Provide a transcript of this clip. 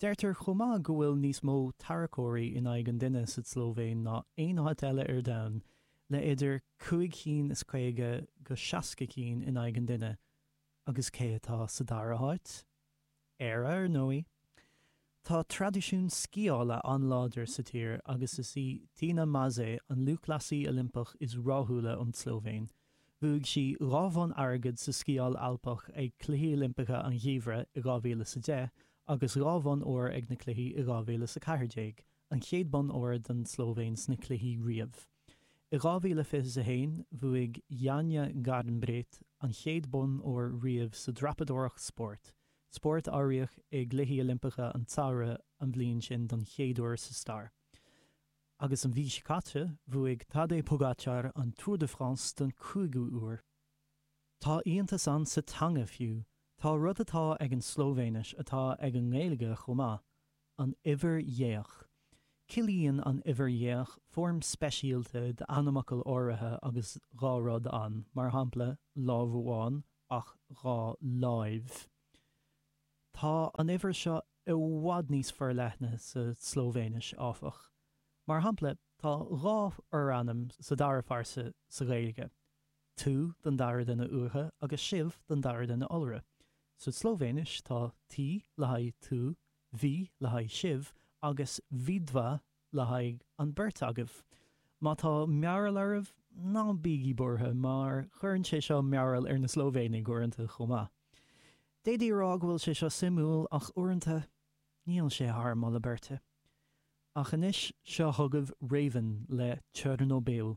Deirtear chomh maith go bhfuil níos mó tarracóirí in aghaidh an duine sa tSlóivéin ná aon áit eile ar domhan, le idir cúig chinn is caoga go seasca cinn in aghaidh an duine. Agus cé atá sa dara háit? Éire, ar ndóigh. Tá traidisiún sciála an-láidir sa tír agus is í Tina Maze an lúthchleasaí Oilimpeach is ráthúla ón tSlóivéin. Bhuaigh sí dhá bhonn airgead sa Sciáil Alpach ag Cluichí Oilimpeacha an Gheimhridh i 2010 agus dhá bhonn óir ag na Cluichí i 2014, an chéad bonn óir don tSlóivéin sna Cluichí riamh. I 2021, bhuaigh Janja Garnbret an chéad bonn óir riamh sa dreapadóireacht spóirt, spórt a áiríodh i gCluichí Oilimpeacha an tSamhraidh an bhliain sin don chéad uair sa stair. Agus an mhí seo caite bhuaigh Tadej Pogačar an Tour de France don cúigiú uair. Tá iontas ann sa teanga fiú, tá rud atá ag an Slóivéinis atá ag an nGaeilge chomh maith, an uimhir dhéach. Ciallaíonn an uimhir dhéach foirm speisialta d'ainmfhocal áirithe agus dhá rud ann, mar shampla, lámh amháin ach dhá láimh. Tá an uimhir seo i bhfad níos forleithne sa tSlóivéinis, áfach. Mar shampla, tá dhá fhorainm sa dara phearsa sa Ghaeilge, tú don dara duine uatha agus sibh don dara duine iolra. Sa tSlóivéinis, tá ti le haghaidh tú, vi le haghaidh sibh, agus vidva le haghaidh an beirt agaibh. Má tá mearbhall oraibh, ná bígí buartha mar cuireann sé seo mearbhall ar na Slóivéanaigh uaireanta chomh maith. D'fhéadfaí a rá go bhfuil sé seo suimiúil ach uaireanta, níl sé thar moladh beirte. Ach anois, seo chugaibh Raven le Chernobyl.